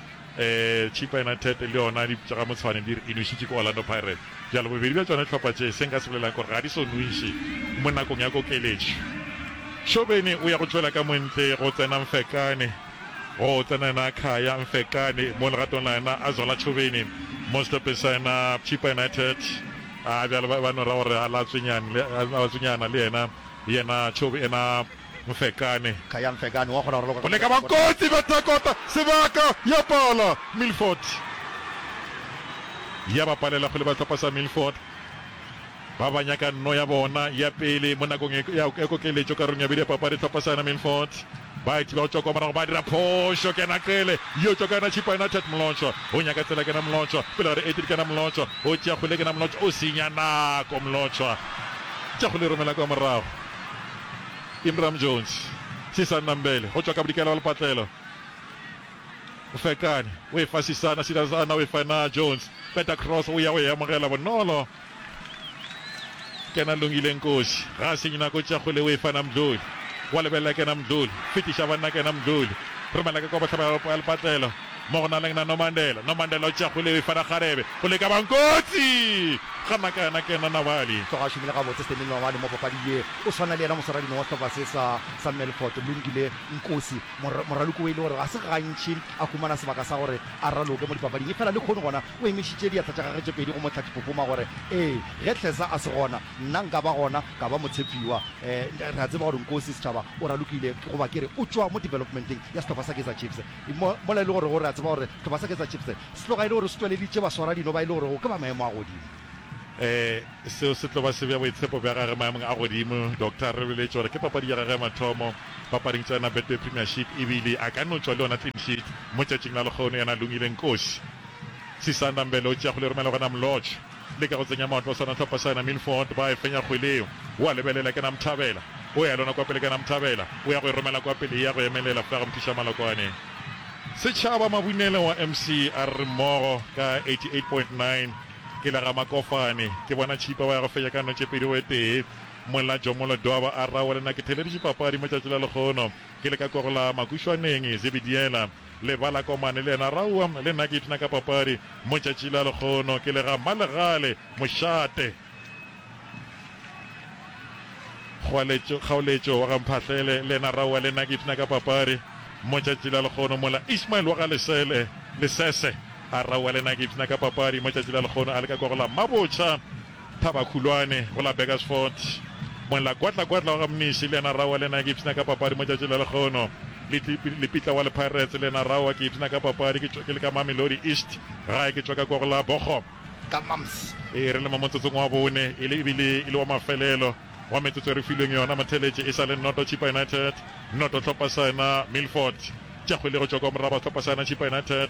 Chippa United le yona tša ga Motshwane di re e nwešitše ke Orlando Pirates, bjale bobedi bja tšona dihlopha tše se nka se bolelago ke gore ga di so nwešwe mo nakong ya kokeletšo. Shobeni o ya go tšwela ka montle go tsena Mfekane, go tsena yena Khaya Mfekane mo legatong la yena a zwala Chobeni mo sehlopeng sa yena Chippa United, bjale ba no ra gore a latswenyana le yena yena Chobe yena. Mfekane. Khaya Mfekane wa kgona go raloka ka Boleka ba kotsi bja Dakota sebaka ya pala Milford ya ba palela go le ba sehlopha sa Milford ba ba nyaka nno ya bona ya pele mo nakong ya kokeletšo karolong ya bobedi ya papadi sehlopha sa yona Milford ba e thiba go tšwa kwa morago ba dira phošo kena qele yo tšwa ka yona Chipa United Mlotšwa o nyaka tsela kena Mlotšwa pele ga re edit kena Mlotšwa o tšea kgole kena Mlotšwa o senya nako Mlotšwa tša go le romela kwa morago Imram Jones, Sisana Mbele go tšwa ka bodikela bja lepatlelo, o ferekane, o e fa Sisana, Sisana o e fa na Jones, beta cross, o ya go e amogela bonolo, kena Lungile Nkosi, ga a senye nako, tšea kgole o e fa na Mdluli, wa lebelela kena Mdluli, fetiša banna kena Mdluli, romela ka kwa bohlabela ya lepatlelo, mo go na leng na Nomandela Nomandela o tšea kgwele eo e fara kgarebe go leka bang kotsi gana ka yena ke yena Nawali. Tloga a šomile gabotse Stanley Nawali mo papadi ye o swana le yena moswaradino wa sehlopha se sa sa Melfort Lungile Nkosi mor moraloki o e le gore ga se gantši a humana sebaka sa gore a raloke mo dipapading efela le khono gona o emišitše diatla tša gage tše pedi go mo tlhatipopoma gore ee ge Tlhesa a se gona nna nka ba gona ka ba motshepiwa eh re a tseba gore Nkosi setšhaba o ralokile goba ke re o tšwa mo developmenteng ya sehlopha sa Kaizer Chiefs. Mo, mola e le gorego re a tseba gore re ba sa ketsa Chiefs, se tlo ga e le gore se tšweleditše baswaradino ba e le gorego ke ba maemo a godimo. Ee, seo se tlo ba se bea boitshepo bja gagwe maemong a godimo. Doctor re boletše gore ke papadi ya gagwe ya mathomo papading tša yona Betway Premiership e bile a ka no tšwa le yona clean sheet mo tšatšing la lekgono yena Lungile Nkosi. Sisanda Mbele o tšea kgole e romela go yena Mlotshwa. Leka go tsenya mahlo sona hlopha sa yona Milford ba e fenya kgwele yeo o a lebelela ke Namthabela o ya lona kwa pele ke Namthabela o ya go e romela kwa pele e ya go emelela fa go mphiša malokwane Setšhaba Mabunele wa MC a re mmogo ka 88.9 ke la ga Makofane ke bona Tšhipa ba ya go fenya ka notše pedi go e tee Molla Jomolo Doba a rawa le na ke theleditše papadi mo tšatši la lekgono ke le ka kogolaa Makušwaneng Zebidiela Lebala komane le yena raua le nna ke ipshina ka papadi mo tšatši la lekgono ke le ga Mmalegale mošate Kgoaletšo kgaoletšo wa ga Mphahlele le yena raua le nna ke ipshina ka papadi mo tšatši la lekgono mola Ismael wa ga Lesele Lesese a raua le nna ke ipshina ka papadi mo tšatši la lekgono a leka kwa go la Mmabotšha Thabakhulwane, go la Burgersfort. Molakwatlakwatla wa ga Mnisi le yena Rawa le yena ke ipshina ka papadi mo tšatši la lekgono. Lepitla wa Lepirates le yena Rawa ke ipshina ka papadi ke le ka Mamelodi East gae ke tšwaka kwa go la Bochum. Ka Mams. Ee, re le mo motsotsong wa bone e le ebile e le wa mafelelo wa metsotso e re filweng yona mo theletše e sa le noto Chippa United noto Tlhopha sa yona Milford. Tša kgwele go tšwa kwa moraba Tlhopha sa yona Chippa United.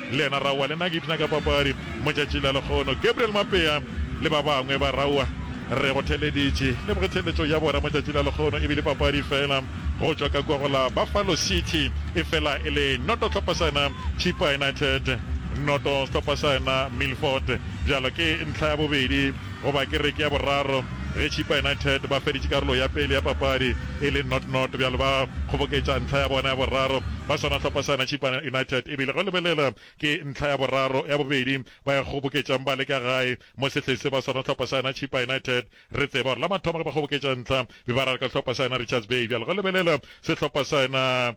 Le yena Raua le nna ke ipshina ka papadi mo tšatšing la lekgono. Gabriel Mapea le ba bangwe ba Raua re go theleditše. Leboge theeletšo ya bona mo tšatšing la lekgono e bile papadi fela go tšwa ka kwa go la Buffalo City e fela e le noto hlopha sa yona Chippa United noto sehlopha sa yona Milford. Bjalo ke ntlha ya bobedi Go ba kereke ya boraro ge Chippa United ba feditše karolo ya pele ya papadi e le not not, bjalo ba kgoboketša ntlha ya bona ya boraro ba swana hlopha sena. Chippa United e bile go lebelela ke ntlha ya boraro ya bobedi ba e kgoboketšang ba le ka gae mo sehleng se. Ba swana hlopha sena Chippa United re tseba gore la mathomo ge ba kgoboketša ntlha be ba raraka hlopha sena Richards Bay, bjalo go lebelela sehlopha sena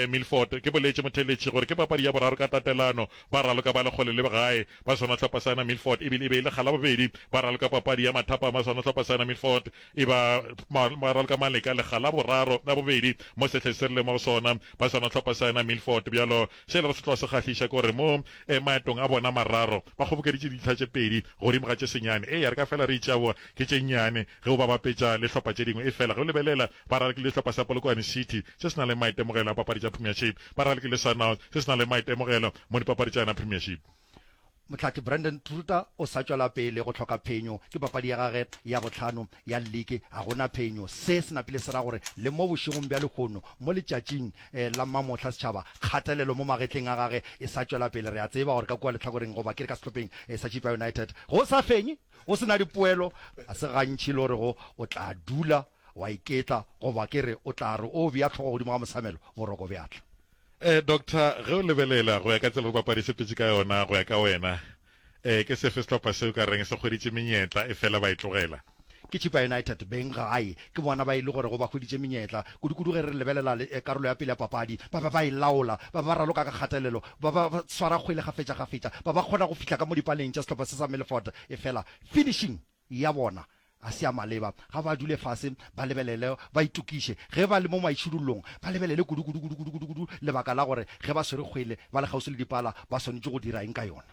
Milford. Ke boletše motheeletši gore ke papadi ya boraro ka tatelano Ba raloka ba le kgole le gae ba swana hlopha sa yona Milford e bile e be e le Galabobedi ba raloka papadi ya mathapa ma swana hlopha sa yona Milford e ba ba raloka maleka le Galaboraro la bobedi mo sehleng se rile mo go sona ba swana hlopha sa yona Milford bjalo se e lego se tloga se kgahliša ke gore mo maetong a bona mararo ba kgobokeditše dintlha tše pedi godimo ga tše senyane e ya re ka fela re itšeaboa ke tše nnyane Ge o ba bapetša le hlopha tše dingwe, efela ge o lebelela, ba ralki le hlopha sa Polokwane City se se nang le maitemogelo a papadi tša Premiership, ba ralki le Sundowns se se nang le maitemogelo mo dipapadi tša yona Premiership. Mohlathi Brandon Truter o sa tšwela pele go hloka phenyo. Ke papadi ya gage ya bohlano ya liki, ga go na phenyo. Se se napile se ra gore le mo bošegong bja lehono, mo letšatšing la mmamohla, setšhaba, kgatelelo mo magetleng a gage e sa tšwela pele. Re a tseba gore ka kua lehlakoreng, goba ke re ka sehlopheng sa Chippa United, go sa fenye. Go se na dipoelo, ga se gantši le orego o tla dula wa iketla goba ke re o tla re o bea tlhogo godimo ga mosamelo, boroko bja tla. E, Doctor, ge o lebelela go ya ka tsela bopapadi se petše ka yona, go ya ka wena, e, ke sefe sehlopha se o ka reng se hweditše menyetla efela ba e tlogela? Ke Chippa United, beng gae. Ke bona ba e le gorego ba hweditše menyetla, kudukudu ge re lebelela karolo ya pele ya papadi. Ba be ba e laola, ba be ba raloka ka kgatelelo, ba ba swara kgwele kgafetšakgafetša, ba ba kgona go fihla ka mo dipaleng tša sehlopha se sa Milford, efela finishing ya bona ga se ya maleba. Ga ba dule fase ba lebelele, ba itokiše. Ge ba le mo maišudullong, ba lebelele kudukudukudukudukudu lebaka la gore ge ba swere kgwele ba le kgauswi le dipala, ba swanetše go dira eng ka yona.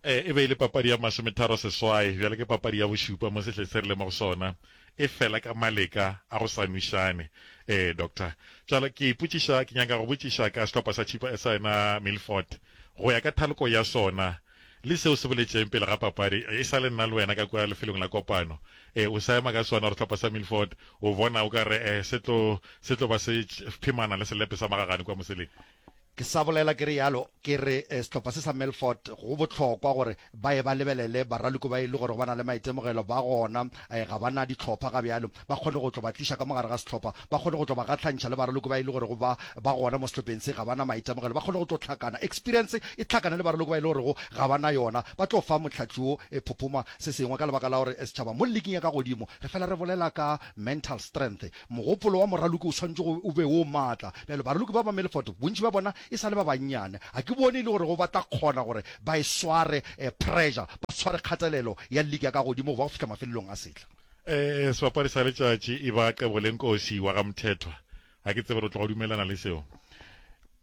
Ee, e be e le papadi ya masometharo-seswai, bjale ke papadi ya bošupa mo sehleng se re leng mo go sona. e fela ka maleka a go sa nwešane. Ee, doctor. Bjale, ke ipotšiša, ke nyaka go botšiša ka sehlopha sa Chippa, sa yena Milford, go ya ka thaloko ya sona, le se o se boletšeng pele ga papadi, e sa le nna le wena ka kua lefelong la kopano. Ee, o sa ema ka sona gore sehlopha sa Milford, o bona o ka re, ee, se tlo, se tlo ba se phemana le selepe sa magagane kua moseleng. Ke sa bolela ke re yalo, ke re sehlopha se sa Melfort go bohlokwa gore ba ye ba lebelele baraloko ba e le gorego ba na le maitemogelo ba gona, ga ba na dihlopha ga bjalo, ba kgone go tlo ba tliša ka mo gare ga sehlopha, ba kgone go tlo ba gahlantšha le baraloko ba e le gorego ba ba gona mo sehlopheng se, ga ba na maitemogelo, ba kgone go tlo hlakana, experience e hlakane le baraloko ba e le gorego ga ba na yona, ba tlo fa Mohlahli wo phophoma se sengwe ka lebaka la gore setšhaba mo liging ya ka godimo re fela re bolela ka mental strength, Mogopolo wa moraloki o swanetše go o be wo maatla. Bjale, baraloki ba Mameleford, bontši bja bona e sa le ba bannyane, ga ke bone e le gorego ba tla kgona gore ba e sware eh, pressure, ba sware kgatelelo ya league ya ka godimo go ba go fihla mafelelong a sehla. Eh, sebapadi sa letšatši e ba Qebolenkosi wa ga Mthethwa. Ga ke tsebe re tloga dumelelana le seo.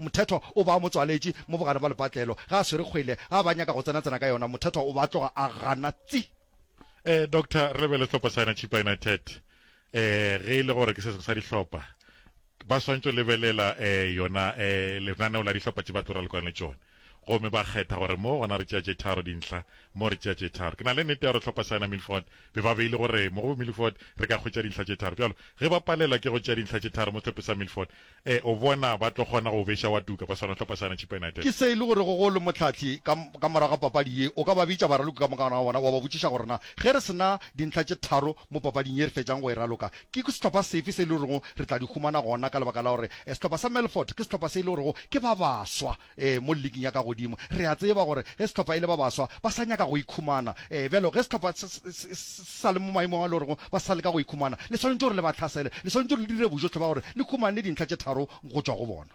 Mothethwa o ba motswaletši mo bogare bja lepatlelo. Ge a swere kgwele, ga ba nyaka go tsena-tsena ka yona, Mothethwa o ba tloga a gana tsi! Eh, doctor, re be le sehlopa sa yena Chippa United. Eh, ge e le gore ke sesgo sa dihlopa, ba swantšo lebelela eh yona eh lenaneo la dihlopa tše ba tlo ralokana le tšone, gomme ba kgetha gore mo gona re tšea tše tharo dintlha, mo re tšea tše tharo. Ke na le nnete ya gore sehlopa sa yena Milford be ba beile gore mo go Milford re ka hwetša dintlha tše tharo. Bjalo, ge ba palelwa ke go tšea dintlha tše tharo mo sehlope sa Milford, Ee, o bona, ba tlo kgona go o beša wa tuka kwa Sehlopa sa Chipa United. Ke se e le gorego go le mohlahli ka, ka morago ga papadi ye, o ka ba bitša baraloki ka moka gona ga bona, wa ba botšiša gore na ge re se na dintlha tše tharo mo papading ye re fetšang go e raloka, ke sehlopa sefe se e le gorego re tla di humana gona ka lebaka la gore sehlopa sa Melfort ke sehlopa se e le gorego ke ba baswa. Ee, mo liking ya ka godimo. Re a tseba gore ge sehlopha e le ba baswa, ba sa nyaka go ikhumana. Ee, bjalo, ge sehlopha se, se, se, se sa le mo maemong a le gorego ba sa leka go ikhumana, le swanetše gore le ba hlasele. Le swanetše gore le dire bojohle bja gore le humane dintlha tše tharo go tšwa go bona.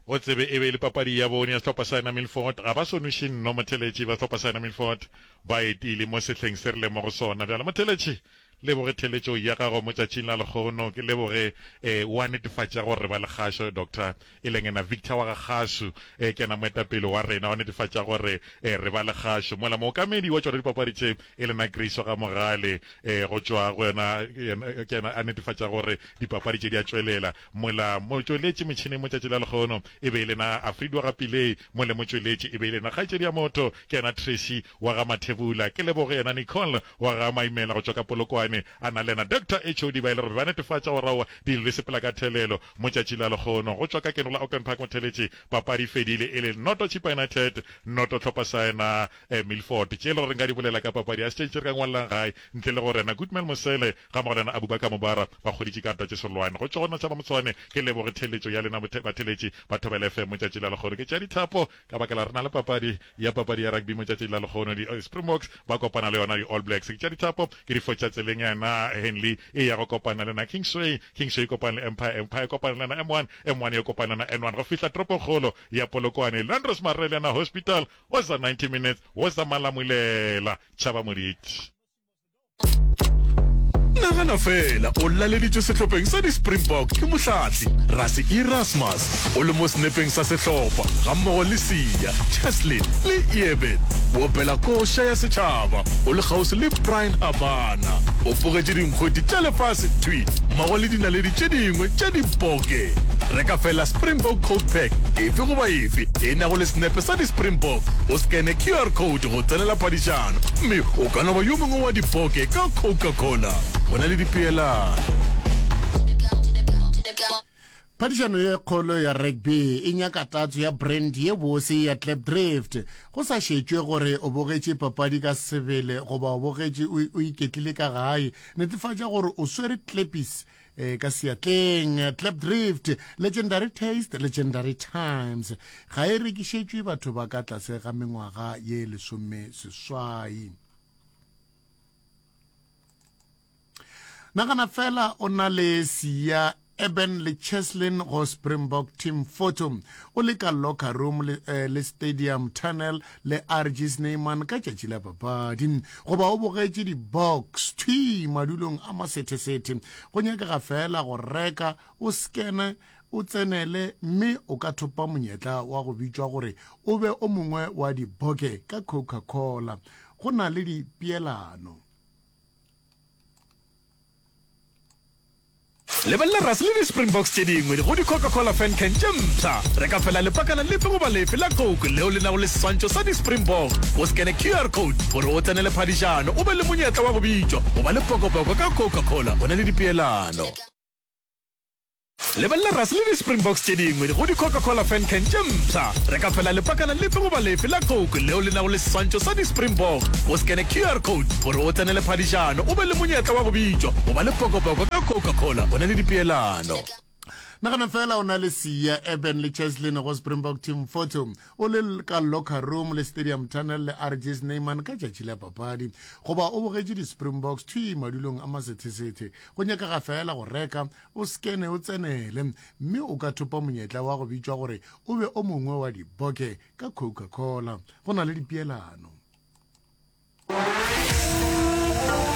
O tsebe, e be e le papadi ya bone ya sehlopha sa yena Milford. Ga ba so nweše nno, motheletši, ba sehlopha sa yena Milford. Ba etile mo sehleng se re leng mo go sona bjale, motheletši. Leboge theeletšo ya gago mo tšatšing la lekgono. Ke leboge eh, wa netefatša gore re ba le kgašo Doctor, e leng ena Victor wa ga Kgasu eh, ke ena moetapele wa rena, wa netefatša gore eh, re ba le kgašo. Mola mookamedi wa tšona dipapadi tše e lena Grace wa ga Mogale eh, go tšwa go yena yena, ke ena a netefatša gore dipapadi tše di a tšwelela. Mola motšweletši metšhineng mo tšatšing la lekgono e be e lena Afridi wa ga Pillay, mole motšweletši e be e lena kgaetšedi ya motho ke yena Tracy wa ga Mathebula, ke leboge yena Nicole wa ga Maimela go tšwa ka Polokwane, a na le yena Doctor HOD ba e le gore ba netefatša gore aowa di lile sepela ka thelelo, Motšatši la Lekgono go tšwa ka Keno la Auckland Park Motheletši, papadi e fedile e le noto Chippa United noto Tlhopha sa yena Milford, tše e le gore nka di bolela ka papadi ya Stage tše re ka ngwalelang gae ntle le gore yena Goodman Mosele gammogo le yena Abubakar Mubara ba kgoditše karta tše serolwane go tšwa go Natšhaba Motshwane, ke leboge theeletšo ya lena batheletši ba Thobela FM Motšatši la Lekgono ke tšea dithapo Ka baka la re na le papadi ya papadi ya rugby motšatši la lekgono di Springboks ba kopana le yona di All Blacks tša dithapo ke di fotša tseleng ya na Henley e ya go kopana le na Kingsway Kingsway e kopane le Empire Empire e kopane le na M1 M1 e kopane le na N1 go fihla toropongkgolo ya Polokwane Landros Marreliana Hospital was a 90 minutes was a malamulela Tšhaba Moditi. nagana fela o laleditswe sehlopheng sa di-springbok ke mohlatli rase erasmus o le mo senepeng sa sehlopha ga mmogo le sia cheslin le eben boopela koša ya setšhaba o le kgauswi le brian abana o pogetše dinkgwedi tša lefase twi mmogo le dinaledi tše dingwe tša diboke re ka fela springbok code pack efe goba efe e nago le senepe sa di-springbok o scane qr code go tsenela padišano gomme o ka no ba yo mongwe wa dipoke ka Coca-Cola. Go na le dipeelano. Phadišano ye kgolo ya rugby e nyaka tatso ya brand ye bose ya Klipdrift. Go sa šetšwe gore o bogetše papadi ka sebele goba o bogetše o iketlile ka gae, netefatša gore o swere klepis e ka seatleng clap drift legendary taste legendary times ga e rekišetšwe batho ba ka tlase ga mengwaga ye lesome seswai nagana fela o na le sia eben le cheslin go springbok team photo o le ka locker room le, eh, le stadium tunnel Le Archie Snyman ka tšatši la papadi. Goba o bogetše di-box, thwi, madulong a masethesethe. Go nyakega feela go reka, o skene, o tsenele, mme o ka thopa monyetla wa go bitšwa gore o be o mongwe wa diboke ka Coca-Cola. Go na le dipeelano. Lebelela Rase le di-Springboks tše dingwe go di-Coca-Cola Fan Can tše mpsha. Reka feela lepakana lefe goba lefe la Coke leo le nago le seswantšho sa di-Springbok, o scanne QR code gore o tsenele phadišano o be le monyetla wa go bitšwa go ba le pokopoko ka Coca-Cola o na le dipeelano. Lebelela Rase le di-Springboks tše dingwe go di-Coca-Cola Fan Can tše mpsha. Reka feela lepakana lefe goba lefe la Coke leo le nago le seswantšho sa di-Springbok, o scanne QR code gore o tsenele phadišano o be le monyetla wa go bitšwa go ba le pokopoko ka Coca-Cola. O na le dipeelano. Nagana feela o na le Siya, Eben le Cheslin go Springbok Team Photo o le ka locker room le stadium tunnel le RG Snyman ka tšatši la papadi goba o bogetše di-Springboks thwi madulong a masethesethe. Go nyakega feela go reka o sekene o tsenele, mme o ka thopa monyetla wa go bitšwa gore o be o mongwe wa diboke ka Coca-Cola. Go na le dipeelano.